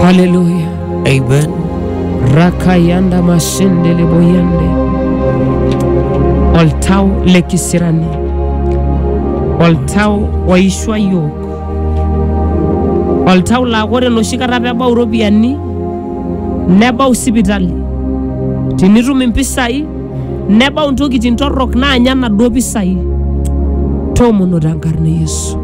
Haleluya. Amen. Rakayanda mashende leboyende. Oltau le kisirani. Oltau oishwa yiok. Oltau laa ore enoshi kata pebau iropiyiani nebau sipitali. Tinitum impisai nebau intokitin torrok naanya naduo pisai. Toomono tenkarna e Yesu.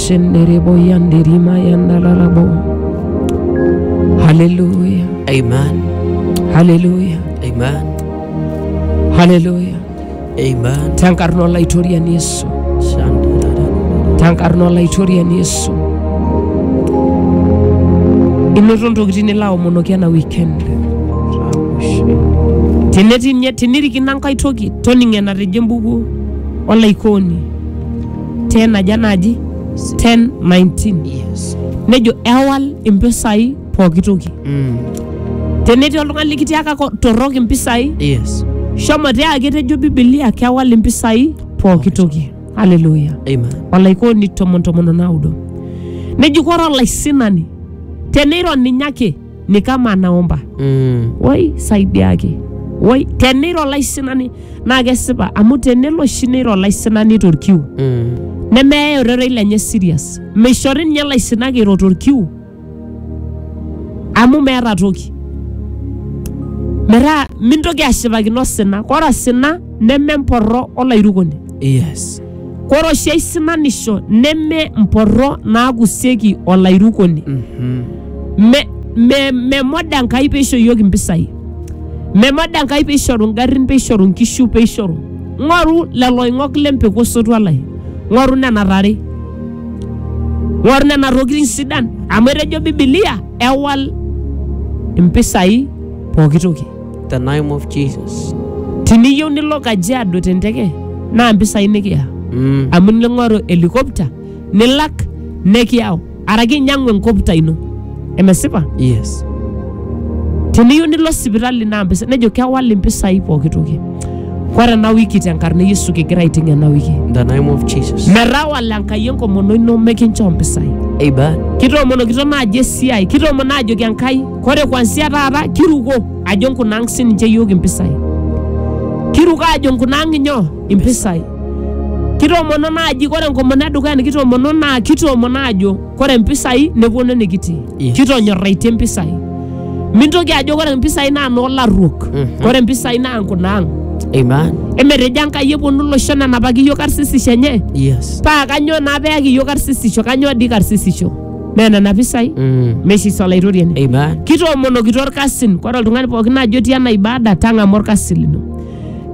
Shenderebo yanderima yandalarabo. Haleluya, Amen. haleluya, Amen. haleluya. Amen. Tankarno laitorian Yesu, Shandarara. tankarno laitorian Yesu. Inoto ntokitin nilo aomonoki ena weekend. Tenetii nye tinirikino enkae toki toning enatejo embuku olaikoni. 10 aja naaji 10 19 Yes. nejo ewal impisai pooki toki Mm. tenetii oltung'ani likitiaka ko- torrok impisai Yes. shomo tiaki etejo bibilia kewal impisai pooki toki haleluya Amen. olaikoni tomon tomon onaudo neji kore olaisinani teneiro ninye ake ni kama anaomba Mm. woi saidiaki woi teniro laisinani naa kesipa amu tenelo oshi neiro laisinani torkiu Mm. nemeyae ororei lenye serious meishori ninye laisinak eiro torkiu amu meeta toki metaa mintoki ashipakino osina ore osina nememporro olairukoni Yes. Kore oshi aisinanisho neme mporro naakusieki olairukoni. Me, me, memoda Enkai peisho iyiook impisai. Memoda Enkai peishoru ngarrin, peishoru nkishu, peishoru. Ng'oru lelo oing'ok le mpeku osotua lai. Ng'oru nena tare. Ng'oru nena tokitin sidan. Amu etejo Bibilia ewal impisai pooki toki. the name of Jesus. tiniyieu nilo kajiado te nteke naa mpisai nikiya Mm. amu ning'oru helikopta nilak nekiyau araki inyang'u enkopta ino emesipa Yes. tiniyieu nilo sipitali naa mpisai nejo kewal impisai pooki toki ore ena wiki tenkarna e yesu kigira aiting ena wiki In the name of Jesus. metawala enkai enkomono ino mekinchoo mpisai Amen. kitoomonokito naaji esiai kitoomono ajoki enkai Kore kwansia taata kiruko ajo nkunaang' sininche iyiook impisai. Kiruko ajo nkunaang' inyoo? Impisai. Kitoomono naaji kore enkomono edukuya nikitoomono naa kitoomono ajo kore impisai neponu enikitii. Yes. Kitonyorraitie impisai. Mintoki ajo kore impisai naa noolarruok. Mhm. Kore impisai naa nkunaang'. Amen. Emetejo Enkai eponu iloshon enapaki iyiook karsisisho enye. Yes. Paa kanyoo naa peyaki iyiook karsisisho? Kanyoo dii karsisisho? naa nena pisai Mm. mesis olaitoriani Amen. kitoomonokito orkasin kore oltung'ani pookin ajo etii ena ibada tang'amu orkasi lino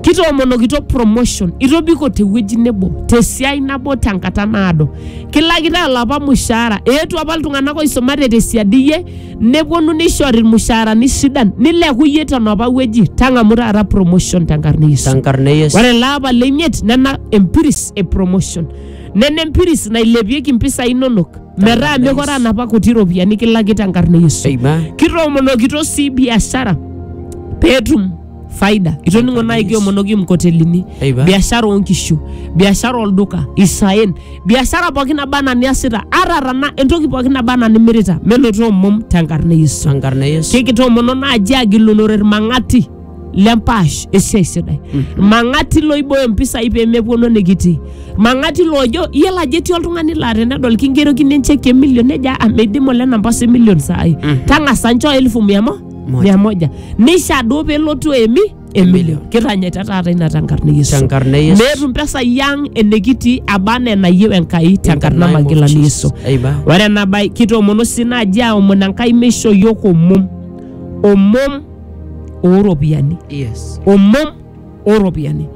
kitoomonokito promotion itobiko tewueji nebo tesiai nabo tenkata naado kilakitae olapa mushaara eetuo apa iltung'anak oisumate tesiadi iyie neponu nishori irmushaarani sidan nileku iyie tenapa wueji tang'amu taata promotion tenkarna e Yesu Tankarna e Yesu. ore ele apa leimiet nena empiris e promotion Nena empiris nailepieki mpisai inonok metaa mekore anapa kuti ropiyiani kilakita enkarna e Yesu. Amen. Kitoomonokito sii biashara peetum faida. Itoning'o nai kiomonoki mkotelini, Amen. biashara oonkishu, biashara olduka, isaen, biashara pookin naba anaa niasita, ata tana entoki pookin naba anaa nimirita, menotoo omom tenkarna e Yesu. Sankarna Yesu. Kikitoomono naaji agilunore ilmang'ati lempaash esiai sidai mang'ati loibooyo mpisai pemepuonu enikitii mang'ati loojo iyiolo ajo etii oltung'ani laa tenedol kingerokini encheki emilion nejo "Ah, meidim ole namba osi milion saai tang'asa nchoo elfu mia mo Moja. mia moja nisha duo pelotu emi emilion kitanyaita taata ina tenkarna e yesu Tenkarna e Yesu. meetu mpesai ang enikitii aba anaa enayieu enkai tenkarna name of magilani yesu Jesus. Amen. ore ena bae kitoomono sii naaji aomon enkai meisho yiok omom omom ooropiyiani yes omom ooropiyiani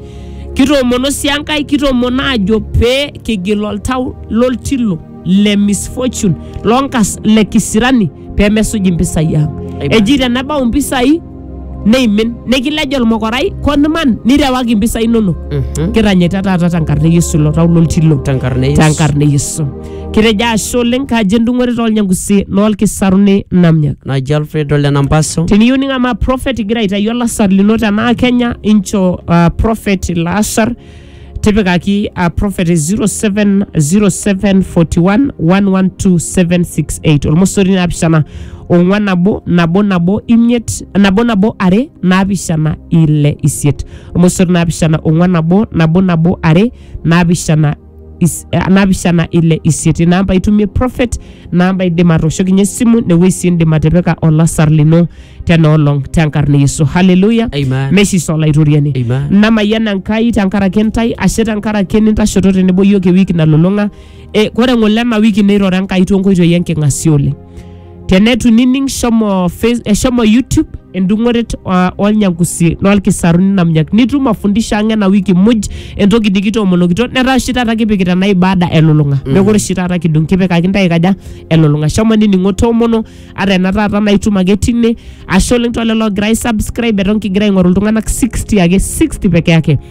kitoomono sii enkai kitoomono aajo pee kigil oltau loltilo le misfortune lonkas le kisirani pee mesuj impisai ang Amen. eji tenebau impisai neimin nikilej olmokorai koniman nirewaki impisai inonok Mhm. kiranyita taata tenkarna e yesu ilo tau loltilo tenkarna e Yesu. tenkarna e yesu Kitejo ashe oleng kaji endung'ore tolnyangusi noolkisaruni namnyak. Naji Alfred Ole Nampaso. Teniyieu ning'amaa prophet igira aitayu olasar lino tenaa Kenya incho uh, prophet ilo asar tipikaki uh, prophet 070741112768 olmosori naapishana ong'wan nabo nabo nabo imiet nabo nabo are naapishana ile isiet olmosori naapishana ong'wan nabo nabo nabo are naapishana is- eh, naapishana ile isiet ina amba itumie prophet ina amba indim atooshokinye esimu newueji sii indim atipika olasar lino tena olong tenkarna e yesu haleluya Amen. meshiso olaitoriani Amen. namayiana nkai tenkaraki ntai ashe tenkaraki nintashoto tenebo yiok ewiki nalulung'a e, kore ng'ole ena wiki neirora nkai toonkoitoi enking'asia oleng tenetu nining shomo, face, eh, shomo youtube endung'oret uh, olnyangusi lolkisaruni namnyak nitum mafundisho ang ena wiki muj entoki nikitoomonokito netaa oshi taata kipikita ena ibada elulung'a mm. mekure oshi taata kidung kipikaki ntae kaja elulung'a shomo nining'o toomono ata ena taata naitum ake tine ashe oleng tolelo ogira aisubscribe eton kigira aing'oru iltung'anak 60 ake 60 peke yake